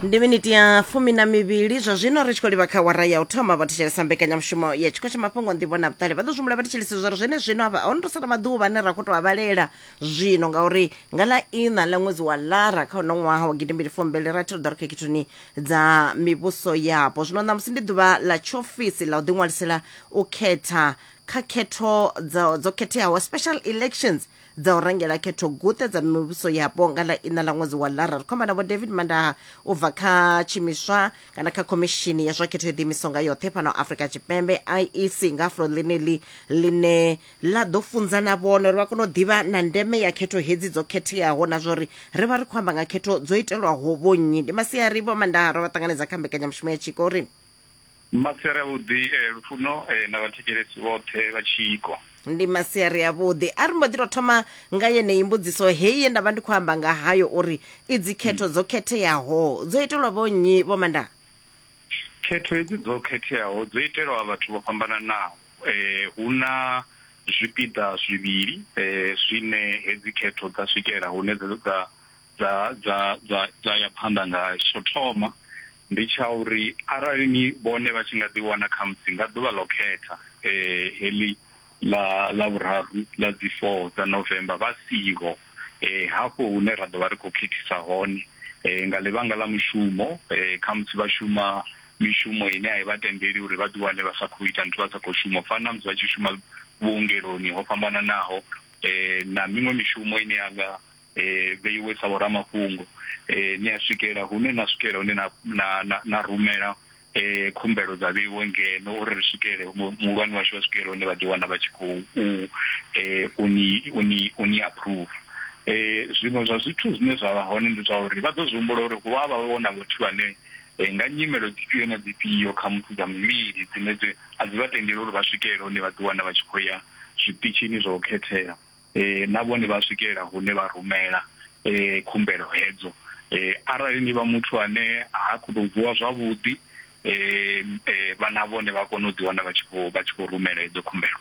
ndi miniti ya fumi na mivhili zwa zwino ri tshi khou livha kha wara ya u thoma vha thetshelesa mbekanyamushumo ya tshiko tsha mafhungo nḓivho na vhuṱali vha ḓo zwimula vha thetshelesa zwa ri zwene zwino avha ono to sala maḓuvha ane ra khou to a vhalela zwino ngauri nga ḽa ina ḽa ṅwedzi wa lara kha uno ṅwaha wa gidimbili fumbili rathi ri ḓo ri khethoni dza mivhuso yapo zwino ṋamusi ndi ḓuvha ḽa tshiofisi ḽa u ḓiṅwalisela u khetha kha khetho dzo dzo khetheaho special elections dza u rangela khetho guṱe dza mivhuso yapo nga ḽa ina ḽa ṅwedzi wa lara ri khomba na vho david mandaha u bva kha tshimiswa kana kha khomishini ya zwa khetho yo ḓiimisaho nga yoṱhe fhano afrika tshipembe iec nga fulo ḽeneḽi ḽine ḽa ḓo funza na vhone uri vha kone u ḓivha na ndeme ya khetho hedzi dzo khetheaho na zwa uri ri vha ri khou amba nga khetho dzo itelwaho vhonnyi ndi masiari vho mandaha ro vha ṱanganedza kha mbekanyamushumo ya tshiko uri Masiari avhuḓi eh, lufuno eh, na vhathekelesi vhoṱhe vha tshiko. ndi masiari avhuḓi a ri mbo ḓi tou thoma nga yeneyi mbudziso heyi ye nda vha ndi khou amba nga hayo uri i dzikhetho dzo khetheaho dzo itelwa vho nnyi vho manda Khetho hedzi dzo khetheaho dzo itelwa vhathu vho fhambananaho. Eh, hu na zwipiḓa zwivhili eh, zwine hedzi khetho dza swikela hune dza dza dza dza dza dza ya phanḓa ngayo tsho thoma ndi tsha uri arali ni vhone vha tshi nga ḓi wana kha musi nga ḓuvha ḽo khetha eh heḽi ḽa ḽa vhuraru ḽa dzi 4 dza November vha siho eh hafho hune ra ḓo vha ri khou khethisa hone eh nga ḽivhanga ḽa mushumo eh kha musi vha shuma mishumo ine a i vha tendeli uri vha ḓi wane vha sa khou ita nthu vha sa khou shuma fana na musi vha tshi shuma vhuongeloni ho fhambananaho eh na miṅwe mishumo ine ya nga vheiwe sa vhoramafhungo, ni a swikela hune na swikela hune na na na na rumela khumbelo dza vheiwe ngeno uri ri swikele muhulwane washu vha swikele hune vha ḓi wana vha tshi khou u ni u ni u ni approve. Zwiṅwe zwa zwithu zwine zwa vha hone ndi zwa uri vha ḓo zwi humbula uri hu avha hu na vhathu vhane nga nyimelo dzifhio na dzifhio kha muthu dza mivhili dzine dzi a dzi vha tendele uri vha swikele hune vha ḓi wana vha tshi khou ya zwiṱitshini zwa u khethela. na vhone vha swikelela hune vha rumela khumbelo hedzo. Arali ni vha muthu ane ha khou tou vuwa zwavhuḓi vha na vhone vha kona u ḓi wana vha tshi khou vha tshi khou rumela hedzo khumbelo.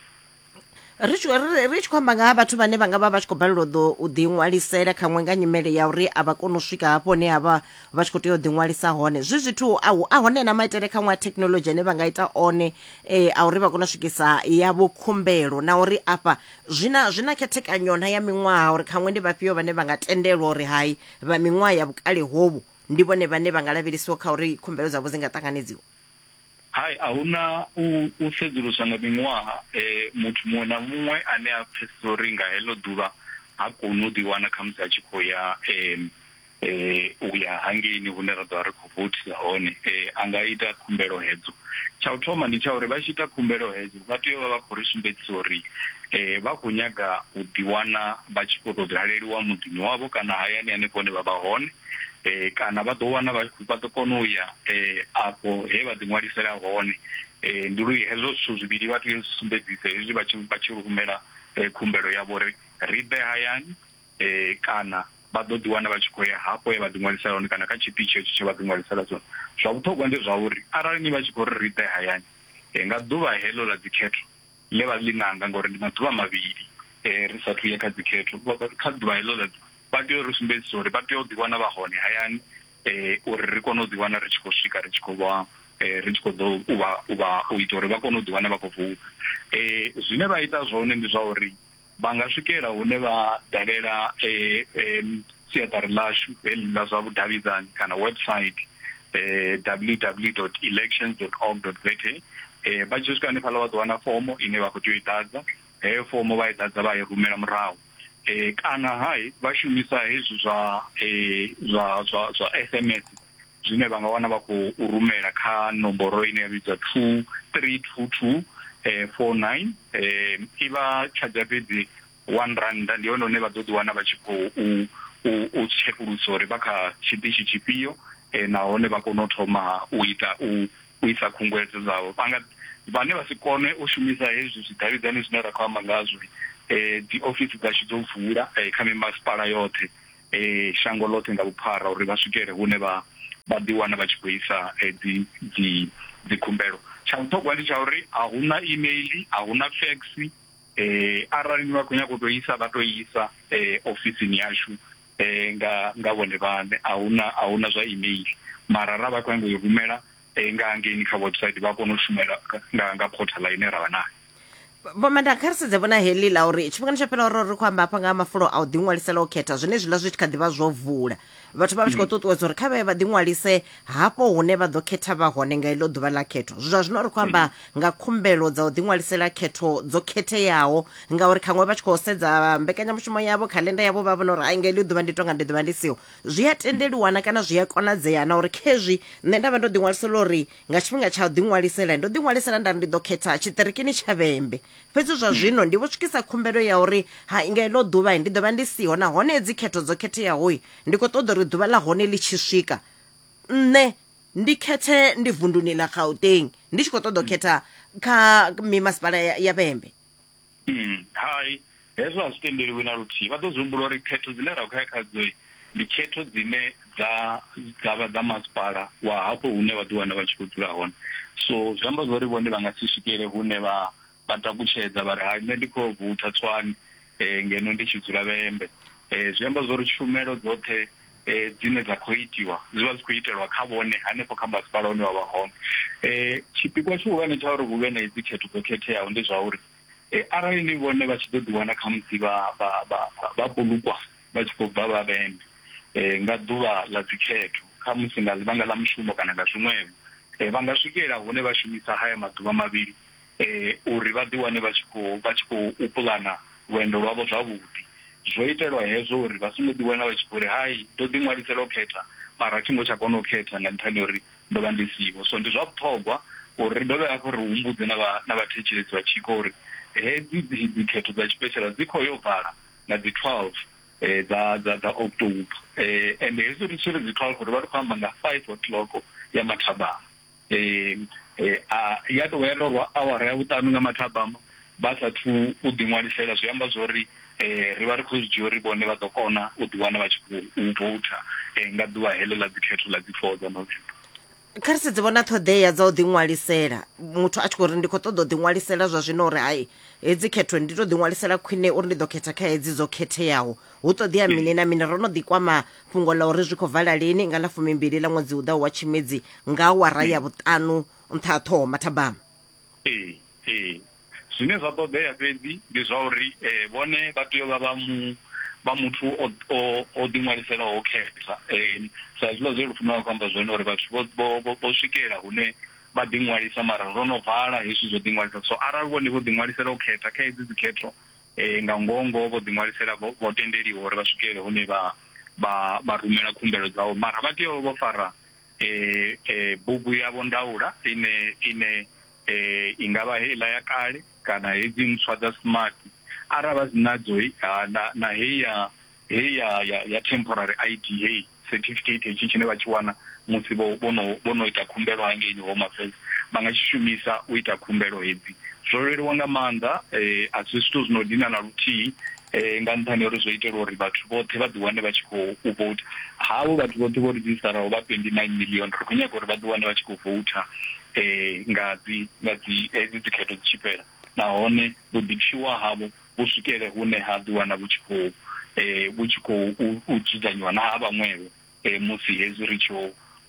ri tshi ri tshi khou amba nga ha vhathu vhane vha nga vha vha tshi khou balelwa ḓo u ḓi ṅwalisela khaṅwe nga nyimele ya uri a vha koni u swika hafho hune ha vha vha tshi khou tea u ḓi ṅwalisa hone zwi zwithu a a hone na maitele khaṅwe a thekhinolodzhi ane vha nga ita one um a uri vha kone u swikisa yavho khumbelo na uri afha Zwi na, zwi na khethekanyo-na ya miṅwaha uri khaṅwe ndi vhafhio vhane vha nga tendelwa uri hai, vha miṅwaha ya vhukale hovhu ndi vhone vhane vha nga lavhelesiwa kha uri khumbelo dzavho dzi nga ṱanganedziwa? Hai, a hu na u, u sedzuluswa nga miṅwaha. E, muthu muṅwe na muṅwe ane a pfesesa uri nga heḽo ḓuvha ha koni u ḓiwana khamusi a tshi khou ya, e, eh, u ya hangeini hune ra ḓovha ri khou vothisa hone eh, a nga ita khumbelo hedzo tsha u thoma ndi tsha uri vha tshi ita khumbelo hedzo vha tea u vha vha khou ri sumbedzisa uri eh, vha khou nyaga u ḓiwana vha tshi khou tou daleliwa muḓini wavho kana hayani hanefho hune vha vha hone eh, kana vha ḓo wana vha vha ḓo kona u ya eh, afho he vha ḓiṅwalisela hone eh, ndi lu hezwo zwithu zwivhili vha tea u sumbedzisa hezwi vha tshi vha tshi rumela eh, khumbelo yavho uri ri ḓe hayani Kana vha ḓo ḓiwana vha tshi khou ya hafho he vha ḓiṅwalisela hone kana kha tshiṱitshi hetsho tshe vha ḓiṅwalisela tshone. Zwa vhuṱhogwa ndi zwa uri arali ni vha tshi khou ri ri ḓe hayani nga ḓuvha heḽo ḽa dzikhetho ḽe vha ḽi nanga ngauri ndi maḓuvha mavhili ri sa athu ya kha dzikhetho, kha ḓuvha heḽo ḽa ḓuvha vha tea u ri sumbedzisa uri vha tea u ḓiwana vha hone hayani uri ri kone u ḓiwana ri tshi khou swika ri tshi khou vha ri tshi khou ḓo u vha u vha u ita uri vha kone u ḓiwana vha khou voutha. Zwine vha ita zwone ndi zwa uri. Vha nga swikela hune vha dalela siaṱari ḽashu heḽi ḽa zwa vhudavhidzani kana website ww dot elections dot org dot za. Vha tshi swika hanefhaḽa vha ḓo wana fomo ine vha khou tea u i ḓadza, heyo fomo vha i ḓadza vha i rumela murahu kana ha vha shumisa hezwi zwa zwa zwa zwa S_M_S. zwine vha nga wana vha khou rumela kha nomboro ine ya vhidzwa two three two two four nine i vha tshadzha fhedzi one rannda ndi hone hune vha ḓo ḓi wana vha tshi khou u tshekulusa uri vha kha tshiṱitshi tshifhio nahone vha kone u thoma u ita u isa khunguwedzo dzavho vha nga vhane vha si kone u shumisa hezwi zwidavhidzani zwine ra khou amba ngazwo dzi ofisi dzashu dzo vula kha mimasipala yoṱhe. shango ḽoṱhe nga vhuphara uri vha swikele hune vha vha ḓiwana vha tshi khou isa dzi dzi dzikhumbelo. Tsha vhuṱhogwa ndi tsha uri a hu na email, a hu na fax, arali ni vha khou nyaga u tou isa vha tou isa ofisini yashu nga nga vhone vhaṋe, a hu na a hu na zwa email mara arali vha khou nyaga u i rumela nga hangeini kha website vha kona u shumela nga nga portal ine ra vha nayo vho manda kha ri sedze vhona heḽi ḽa uri tshifhingani tsho fhela ro ri khou amba hafha nga mafulo a u ḓiṅwalisela u khetha zwine zwiḽa zwi tshi kha ḓivha zwo vula vhathu vha vha tshi khou mm. ṱuṱuwedza uri kha vhaye vha ḓiṅwalise hafho hune vha ḓo khetha vha hone nga iḽo ḓuvha ḽa khetho zwa zwino ri khou amba mm. nga khumbelo dza u ḓiṅwalisela khetho dzo khetheaho ngauri khaṅwe vha tshi khou sedza mbekanyamushumo yavho khalenda yavho vha vhona uri ai nga iḽo ḓuvha ndi tonga ndi ḓuvha ndi siho zwi a tendeliwana kana zwi a konadzea na uri khezwi nṋe nda vha ndo ḓiṅwalisela uri nga tshifhinga tsha u ḓiṅwalisela ndo ḓiṅwalisela nda ri ndi ḓo khetha tshiṱirikini tsha vhembe fhedzi zwa hmm. zwino ndi vho swikisa khumbelo ya uri ha nga iḽo ḓuvha ndi ḓo vha ndi siho nahone dzi khetho dzo khetheaho ndi khou ṱoḓa uri ḓuvha ḽa hone ḽi tshi swika nṋe ndi khethe ndi vunduni ḽa gauteng ndi tshi khou ṱoḓa u hmm. khetha kha mimasipala ya vhembe Umm, hai, hezwo a zwi tendeliwi na luthihi. Vha ḓo zwi humbula uri khetho dzine ra khou ya khadzo ndi khetho dzine dza dza vha dza masipala wa hafho hune vha ḓi wana vha tshi khou dzula hone. So zwi amba zwori vhone vha nga si swikele hune vha vha takutshedza vha ri hai nṋe ndi kho yo voutha Tshwane ngeno ndi tshi dzula Vhembe. Zwi amba zwori tshumelo dzoṱhe dzine dza khou itiwa zwi vha zwi khou itelwa kha vhone hanefho kha masipala une wa vha hone. Tshipikwa tshihulwane tsha uri hu vhe na hedzi khetho dzo khetheaho ndi zwa uri arali ni vhone vha tshi ḓo ḓiwana khamusi vha vha vha vha polukwa vha tshi khou bva vhavhende nga ḓuvha ḽa dzikhetho khamusi nga ḽivhanga ḽa mushumo kana nga zwiṅwevho, vha nga swikelela hune vha shumisa haya maḓuvha mavhili uri vha ḓiwane vha tshi khou vha tshi khou puḽana lwendo lwavho zwavhuḓi. Zwo itelwa hezwo uri vha songo ḓiwana vha tshi khou ri, Hai, ndo ḓiṅwalisela u khetha, mara a thi ngo tsha kona u khetha nga nṱhani ha uri ndo vha ndi siho. So ndi zwa vhuṱhogwa uri ri dovhe hafhu ri humbudze na vha na vhathetshelesi vha tshiko uri hedzi dzi dzikhetho dza tshipeshala dzi khou yo vala nga dzi 12 dza dza dza October. Ende hezwi ri tshi ri dzi 12 ri vha ri khou amba nga 5 o'clock ya mathabama. eh, eh, a, ya tovha ya torwa awara ya vhuṱanu nga mathabama vha sathu u ḓiṅwalisela zwi amba zwo ri eh, ri vha ri khou zwi dzhia uri vhone vha ḓo kona u ḓiwana vha tshi khou vouta eh, nga ḓuvha heḽo ḽa dzikhetho ḽa dzi four dza november kha ri sedze vhona ṱhoḓea dza u ḓiṅwalisela muthu a tshi khou ri ndi khou ṱoḓa u ḓiṅwalisela zwa zwino uri hai hedzi khetho ndi to ḓiṅwalisela khwine uri ndi ḓo khetha kha hedzi dzo khetheaho hu ṱoḓea mini na mini ro no ḓikwama Fhungo ḽa uri zwi khou vala lini nga ḽa fumimbili ḽa ṅwedzi u ḓaho wa Tshimedzi nga awara ya vhuṱanu nṱha ha Ṱhoho Mathabama. Ee, ee. Zwine zwa ṱoḓea fhedzi ndi zwa uri vhone vha tea u vha vha mu, vha muthu o, o, o ḓiṅwaliselaho u khetha. Sa hezwiḽa zwe Lufuno a khou amba zwone uri vhathu vho, vho, vho, vho swikela hune vha ḓiṅwalisa mara ro no vala hezwi zwo ḓiṅwalisa. So arali vhone vho ḓiṅwalisela u khetha kha hedzi dzikhetho, Nga ngoho-ngoho vho ḓiṅwalisela vho vho tendeliwa uri vha swikelele hune vha vha vha rumela khumbelo dzavho, mara vha tea u vha vho fara bugu yavho ndaula ine ine i nga vha heiḽa ya kale kana hedzi ntswa dza smart. Arali vha si nadzo na na heyi ya heyi ya ya ya temporary ID heyi certificate hetshi tshine vha tshi wana musi vho vho no vho no ita khumbelo hangeini Home Affairs vha nga tshi shumisa u ita khumbelo hedzi zwo leluwa nga maanḓa eh, a si zwithu zwi no dina na luthihi eh, nga nṱhani uri zwo itelwa uri vhathu vhoṱhe vha ḓiwane vha tshi khou u vouta havho vhathu vhoṱhe vho redzhistaraho vha 29 million ri khou nyaga uri vha ḓiwane vha tshi khou vouta eh, nga dzi nga dzi hedzi dzikhetho dzi tshi fhela nahone vhuḓipfiwa havho vhu swikele hune ha ḓiwana vhu tshi khou vhu tshi khou u dzudzanyiwa na ha vhaṅwevho musi hezwi ri tshi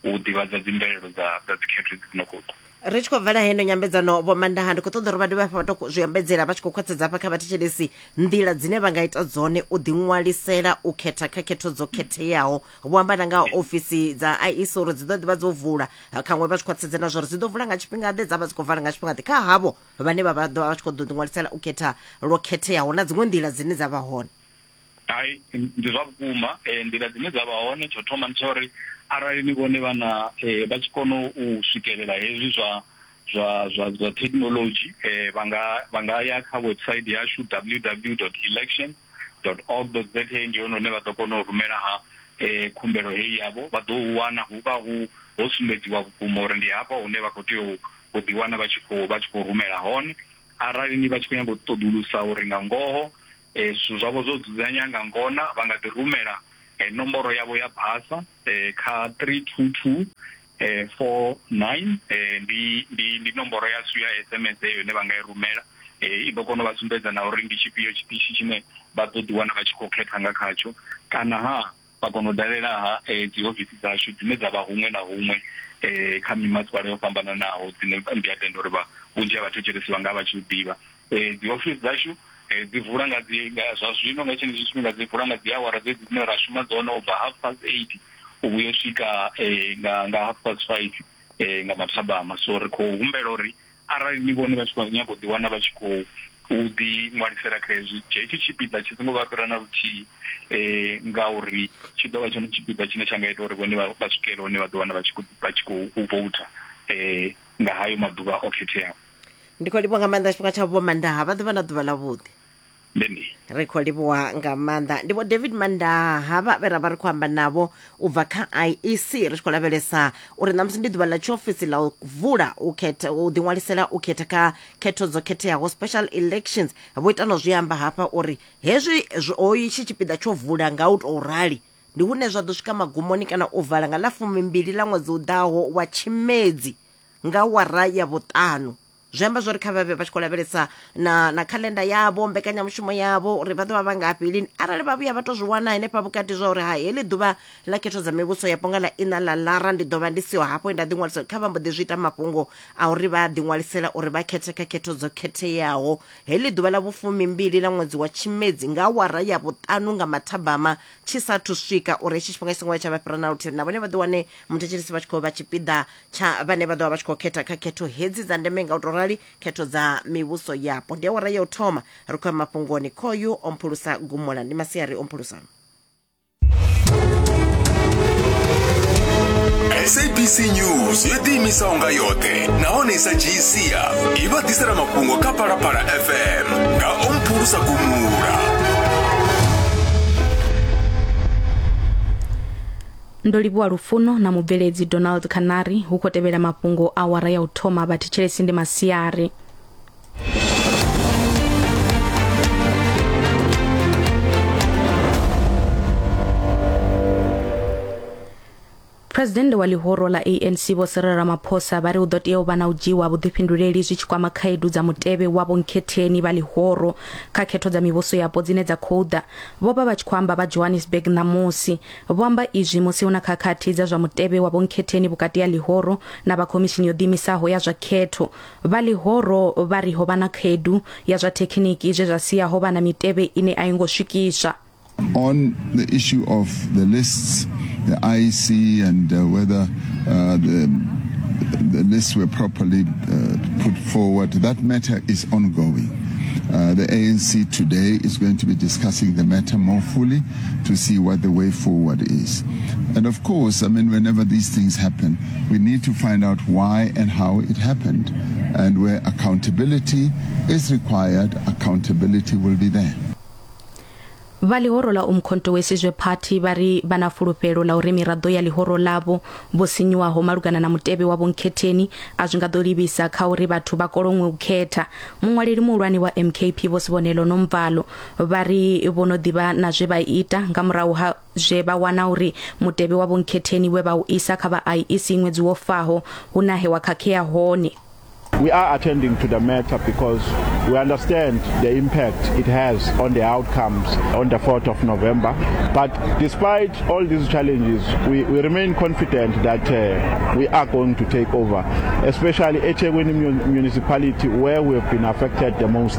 u ḓivhadza dzimvelelo dza dza dzikhetho dzi no khou ḓa. ri tshi khou bvela heno nyambedzano vho mandaha ndi khou ṱoḓa uri vha dovhe hafha vha to zwi ambedzela vha tshi khou khwaṱhedza hafha kha vhathetshelesi nḓila dzine vha nga ita dzone u ḓiṅwalisela u khetha kha khetho dzo khetheaho vho amba na nga ofisi dza iec uri dzi ḓo ḓivha dzo vula khaṅwe vha tshi khwaṱhedze na zwa uri dzi ḓo vula nga tshifhinga ḓe dza vha dzi khou vala nga tshifhinga ḓe kha havho vhane vha vha ḓo vha vha tshi khou ḓo ḓiṅwalisela u khetha lwo khetheaho na dziṅwe nḓila dzine dza vha hone hai ndi zwa vhukuma eh, nḓila dzine dza vha hone tsho thoma ndi tsha uri arali ni vhone vhana eh, vha tshi kona u swikelela hezwi zwa zwa zwa zwa technology eh, vha nga vha nga ya kha website yashu www.election org za ndi hone hune vha ḓo kona u rumela ha eh, khumbelo heyi yavho vha ḓo u wana hu vha hu ho sumbedziwa vhukuma uri ndi hafha hune vha khou tea u vho ḓiwana vha tshi khou vha tshi khou rumela hone arali ni vha tshi khou nyanga u ṱoḓulusa uri nga ngoho zwithu zwavho zwo dzudzanya nga ngona vha nga ḓi rumela nomboro yavho ya basa kha 32249 ndi ndi ndi nomboro yashu ya SMS heyo ine vha nga i rumela i ḓo kona u vha sumbedza na uri ndi tshifhio tshiṱitshi tshine vha ḓo ḓiwana vha tshi khou khetha nga khatsho kana ha Vha kona u dalela-ha dziofisi dzashu dzine dza vha huṅwe na huṅwe kha mimasipala yo fhambananaho, dzine ndi a tenda uri vhunzhi ha vhathetshelesi vha nga vha tshi u ḓivha. Dziofisi dzashu dzi vula nga dzi, zwa zwino nga tshenetshi tshifhinga dzi vula nga dzi awara dzedzi dzine ra shuma dzone, u bva half past eight u vhuya u swika nga half past five nga mathabama. So ri khou humbela uri Arali ni vhone vha tshi khou nyaga u ḓiwana vha tshi khou ḓiṅwalisela kha hezwi, hetshi tshipiḓa tshi songo vha fhira na luthihi ngauri tshi ḓo vha tshone tshipiḓa tshine tsha nga ita uri vhone vha swikele hune vha ḓiwana vha tshi khou vha tshi khou voutha nga hayo maḓuvha o khetheaho. Ndi khou livhuwa nga maanḓa tshifhinga tshavho Vho Mandaha, vha ḓe vha na ḓuvha ḽavhuḓi. Amen. ri khou livhuwa nga maanḓa ndi vho david mandaa havha vhe ra vha ri khou amba navho u bva kha iec ri tshi khou lavhelesa uri ṋamusi ndi ḓuvha ḽa tshiofisi ḽa u vula u khetha u ḓiṅwalisela u khetha kha khetho dzo khetheaho special elections vho ita no zwi amba hafha uri hezwi zwi- ho itshi tshipiḓa tsho vula nga u tou rali ndi hune zwa ḓo swika magumoni kana u vala nga ḽa fumimbili ḽa ṅwedzi u ḓaho wa tshimedzi nga wara ya vhuṱanu zwi amba zwori kha vhavhe vha tshi khou lavhelesa na na calendar yavho mbekanyamushumo yavho uri vha ḓo vha vha ngafhi lini arali vha vhuya vha to zwi wana henefha vhukati zwa uri ha heḽi ḓuvha ḽa khetho dza mivhuso yapo nga ḽa ina ḽa lara ndi ḓo vha ndi siho hafho nda ḓiṅwalisa kha vha mbo ḓi zwi ita mafhungo a uri vha ḓiṅwalisela uri vha khethe kha khetho dzo khetheaho heḽi ḓuvha ḽa vhufumi mbili ḽa ṅwedzi wa tshimedzi nga awara ya vhuṱanu nga mathabama tshi sathu swika uri hetshi tshifhinga tshi songo ya tsha vha fhira na luthihi na vhone vha ḓi wane muthetshelesi vha tshi khou vha tshipiḓa tsha vhane vha ḓo vha vha tshi khou khetha kha khetho hedzi dza ndeme nga u tou rali khetho dza mivhuso yapo ndi awara ya u thoma ri khou ya mafhungoni khoyu o mphulusa gumula ndi masiari o mphulusa sabc news yo ḓiimisaho nga yoṱhe nahone i sa dzhii sia i vha ḓisela mafhungo kha phalaphala fm nga o mphulusa gumula ndo livhuwa lufuno na mubveledzi donald canary hu khou tevhela mafhungo a wara ya u thoma vha thetshelesi ndi masiari phuresidennde wa ḽihoro ḽa anc vho sirela ramaphosa vha ri hu ḓo tea u vha na u dzhiiwa vhuḓifhinduleli zwi tshi kwama khaedu dza mutevhe wa vhonkhetheni vha ḽihoro kha khetho dza mivhuso yapo dzine dza khou ḓa vho vha vha tshi khou amba vha johannesburg ṋamusi Vho amba izwi musi hu na khakhathi dza zwa mutevhe wa vhonkhetheni vhukati ha ḽihoro na vha khomishini yo ḓiimisaho ya zwa khetho. Vha ḽihoro vha ri ho vha na khaedu ya zwa thekhiniki zwe zwa sia ho vha na mitevhe ine a yo ngo swikiswa. On the issue of the lists, the IEC and uh, whether uh, the, the lists were properly uh, put forward, that matter is ongoing. Uh, the ANC today is going to be discussing the matter more fully. to see what the way forward is. And of course, I mean, whenever these things happen, we need to find out why and how it happened. And where accountability is required, accountability will be there. vha ḽihoro ḽa umkhonto wesizwe party vha ri vha na fulufhelo ḽa uri miraḓo ya ḽihoro ḽavho vho sinyuwaho malugana na mutevhe wa vhonkhetheni a zwi nga ḓo livhisa kha uri vhathu vha koloṅwe u khetha muṅwaleli muhulwane wa mkp vho sibonelo nomvalo vha ri vho no ḓivha na zwe vha ita nga murahu ha zwe vha wana uri mutevhe wa vhonkhetheni we vha u isa kha vha IEC ṅwedzi wo faho hu na he wa khakhea hone We are attending to the matter because we understand the impact it has on the outcomes on the 4th of November. But despite all these challenges, we, we remain confident that uh, we are going to take over, especially Echegwini municipality where we have been affected the most.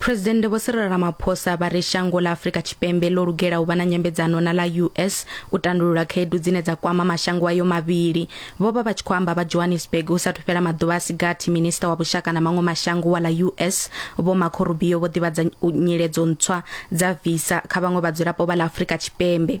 Phresidennde Vho Cyril Ramaphosa vha ri shango ḽa Afrika Tshipembe ḽo lugela u vha na nyambedzano na ḽa US u tandulula khaedu dzine dza kwama mashango ayo mavhili. Vho vha vha tshi khou amba vha Johannesburg hu sathu fhela maḓuvha a si gathi minisiṱa wa vhushaka na maṅwe mashango wa ḽa US Vho Marco Rubio vho ḓivhadza nyiledzo ntswa dza visa kha vhaṅwe vhadzulapo vha ḽa Afrika Tshipembe.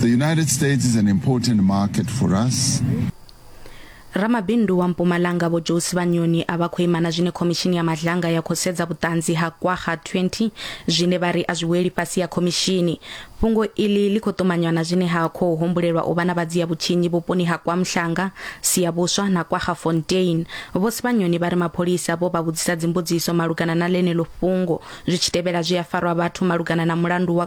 The United States is an important market for us. Ramabindu wa Mpumalanga vho Josi Vhanyoni a vha khou ima na zwine khomishini ya madlanga ya khou sedza vhuṱanzi ha kwaha 20 zwine vha ri a zwi weli fhasi ya khomishini. Fhungo iḽi ḽi khou ṱumanywa na zwine ha khou humbulelwa u vha na vhadzia vhutshinyi vhuponi ha KwaMhlanga, Siyabuswa na KwaGafontein. Vho Sibanyoni vha ri mapholisa vho vha vhudzisa dzimbudziso malugana na ḽeneḽo fhungo zwi tshi tevhela zwi a farwa vhathu malugana na mulandu wa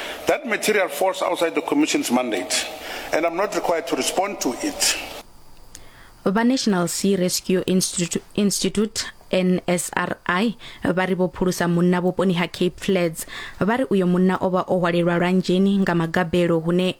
That material falls outside the Commission's mandate and I'm not required to respond to it. vha national sea rescue institute, institute nsri vha ri vho phulusa munna vhuponi ha cape flats vha ri uyo munna o vha o hwalelwa lwanzheni nga magabelo hune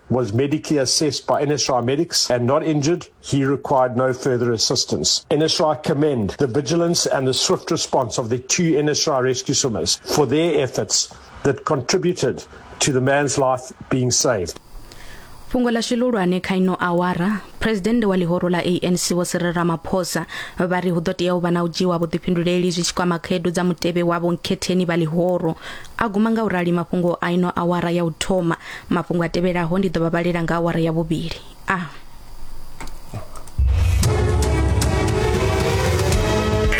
was medically assessed by NSRI medics and not injured, he required no further assistance. NSRI commend the vigilance and the swift response of the two NSRI rescue swimmers for their efforts that contributed to the man's life being saved. fhungo ḽashu ḽihulwane kha ino awara phuresidennde wa ḽihoro ḽa anc vho siril ramaphosa vha ri hu ḓo tea u vha na u dzhiwa vhuḓifhinduleli zwi tshi kwama khaedu dza mutevhe wa vhonkhetheni vha ḽihoro A guma nga u rali mafhungo a ino awara ya u thoma. Mafhungo a tevhelaho ndi ḓo vha vhalela nga awara ya vhuvhili. A.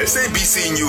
SABC News.